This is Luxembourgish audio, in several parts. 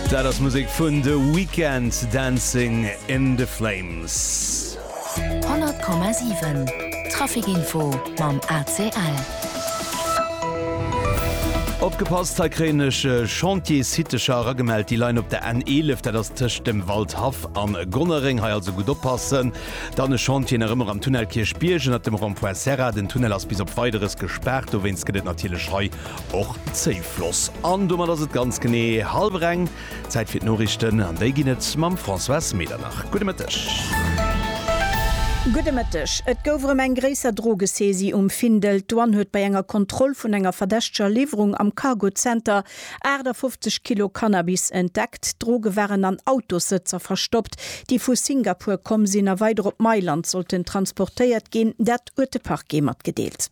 Dat ass Musek vun The Weeknd, Dancing in the Flames. 100,7 Traficinfo mam ACL. Opgepasst, hei kréien ech Chantiersitecher eragemellt, déi leien op der N11, dat ass tëscht dem Waldhaff a Gonnereng. Hei also gutt oppassen. Dann e Chantier nach ëmmer am Tunnel Kierchbierg ënnert dem Rond-point Serra. Den Tunnel ass bis op Weideres gespaart, dowéinst gëtt et natierlech hei och Zéifloss. An domat ass et ganz genee hallwer eng. Zäit fir d'Noriichten, an déi ginn et mam Françoise Medernach. Gudde Mëtteg. Gudde Mëtteg. Et gouf erëm eng gréisser Drogesaisie um Findel. D'Douane huet bei enger Kontroll vun enger verdächteger Liwwerung am Cargozenter 58 Kilo Cannabis entdeckt. D'Droge waren an Autossëtzer verstoppt, déi vu Singapur komm sinn a weider op Mailand sollten transportéiert ginn. Dat huet de Parquet matgedeelt.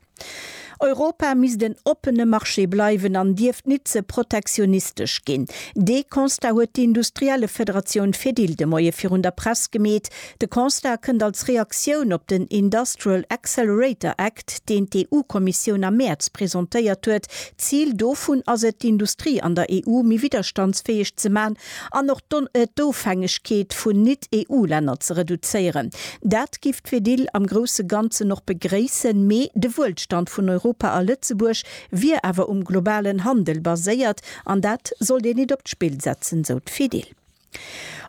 Europa misst en oppene Marché bleiwen an dierft nit ze protektionistesch ginn. Dee Constat huet d'Industriellefederatioun Fedil de Moie virun der Press gemeet. De Constat kënnt als Reaktioun op den Industrial Accelerator Act, deen d'EU-Kommissioun am Mäerz presentéiert huet. D'Zil dovun ass et, d'Industrie an der EU méi widderstandsfäeg ze man an och d'Ofhängegkeet vun Nit-EU-Länner ze reduzéieren. Dat gi D'Fir Dill am grousse Ganzen och begréissen, mee de Wuelstand vun Europa a Lëtzebuerg wier awer um globalen Handel baséiert an dat sollt een nit op d'Spill setzen, sou d'Fir Dill.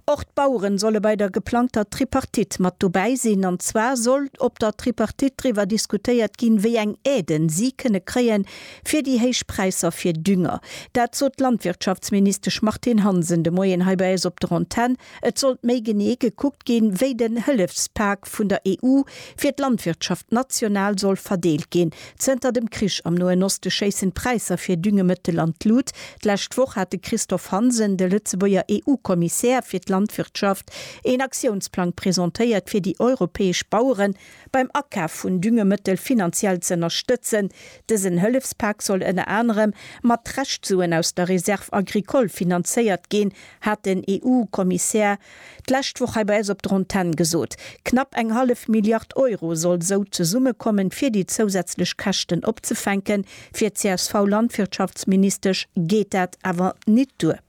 Och d'Baueren solle bei der geplangter Tripartite mat dobäi sinn, an zwar soll op der Tripartite driwwer diskutéiert ginn, wéi eng Aiden si kënne kréien, fir déi héich Präisser fir Dünger. Dat sot d'Landwirtschaftsministesch Martine Hansen de Moien hei bei eis op der Antenn. Et sollt méi genee gekuckt ginn, wéi den Hëllefspak vun der EU fir d'Landwirtschaft national soll verdeelt ginn. Zënter dem Krich am Noen Oste schéissen d'Präisser fir Düngemëttel an d'Lut. D'lescht Woch hat de Christophe Hansen, de Lëtzebuerger EU-Kommissär fir d'Landwirtschaft, een Aktiounsplang presentéiert, fir déi europäesch Bauere beim Akaf vun Düngemëttel finanziell z'ënnerstëtzen. Dësen Hëllefspak soll ënner anerem mat Reschtsuen aus der Réserve agricole finanzéiert ginn. hat den EU-Kommissär d'lescht Woch hei bei eis op der Antenn gesot. Knapp eng hallef Milliard Euro soll esou zesummekommen, fir déi zousätzlech Käschten opzefänken. Fir d'CSV-Landwirtschaftsministesch geet dat awer nit duer.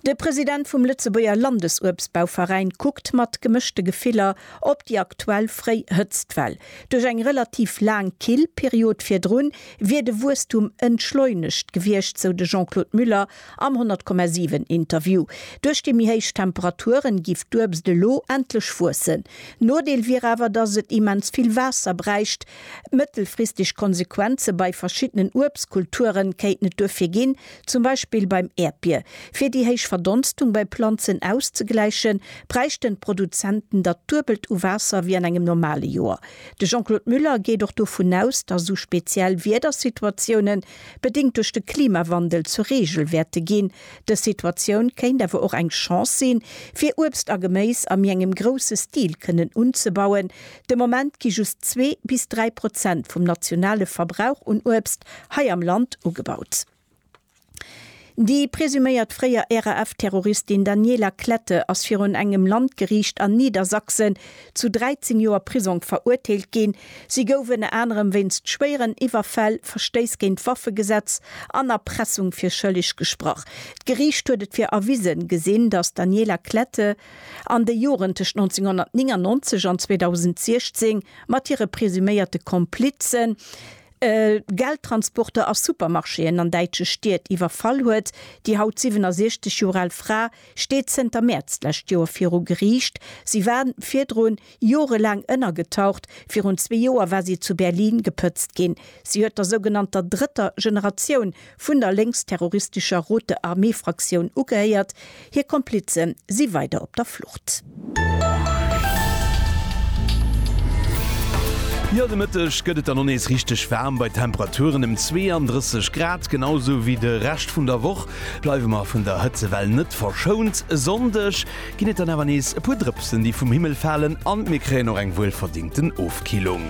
De President vum Lëtzebuerger Landesuebstbauveräin kuckt mat gemëschte Gefiller op déi aktuell fréi Hëtztwell. Duerch eng relativ laang Killperiod virdrun wier de Wuesstum entschleunegt gewiescht, sou de Jean-Claude Muller Am 100,7 Interview. Duerch déi méi héich Temperaturen giff d'Uebst elo endlech wuessen. Nodeel wier awer, dass et immens vill Waasser bräicht. Mëttelfristeg Konsequenze bei verschiddenen Uebstkulturen kéinten et duerfir ginn, zum Beispill beim Äerdbier. Fir déi héich Verdonstung bei Planzen auszegläichen, bräichten d'Produzenten dat duebelt u Waasser wéi an engem normale Joer. De Jean-Claude Muller geet och dovun aus, dass esou speziell Wiedersituatiounen, Bedéngt duerch de Klimawandel zur Reegel wäerte ginn. Dës Situatioun kéint awer och eng Chance sinn, fir Uebst a Geméis a méi engem grousse Stil kënnen unzebauen. De Moment gi just zwee bis dräi Prozent vum nationale Verbrauch un Uebst hei am Land ugebaut. Déi presuméiert fréier RAF-Terroristin Daniela Klette ass virun engem Landgeriicht an Niedersachsen zu 13 Joer Prisong verurteelt ginn. Si gouf ënner anerem wéinst schwéieren Iwwerfäll, Verstéiss géint d'Waffegesetz an Erpressung fir schëlleg gesprach. D'Geriicht huet et fir erwisen gesinn, datt d'Daniela Klette an de Joren tëscht 1999 an 2016 mat hire presuméierte Komplizen, Geldtransporter a Supermarchéen an däitsche Stied iwwerfall huet. Déi haut 67 Joer al Fra steet zënter Mäerz d'lescht Joer viru Geriicht. Si war virdrun jorelaang ënnergetaucht. Virun zwee Joer war si zu Berlin gepëtzt ginn. Si huet der sougenannter drëtter Generatioun vun der lénksterroristescher Rote Armée Fraktioun ugehéiert. Hir Komplize si weider op der Flucht. Jo, de Mëtteg gëtt et dann och nees richteg waarm bei Temperaturen ëm 32 Grad. Genau sou wéi de Rescht vun der Woch bleiwe mer vun der Hëtzewell net verschount. E Sonndeg ginn et dann awer nees e puer Drëpsen, déi vum Himmel falen an mir kréien och eng wuelverdingten Ofkillung.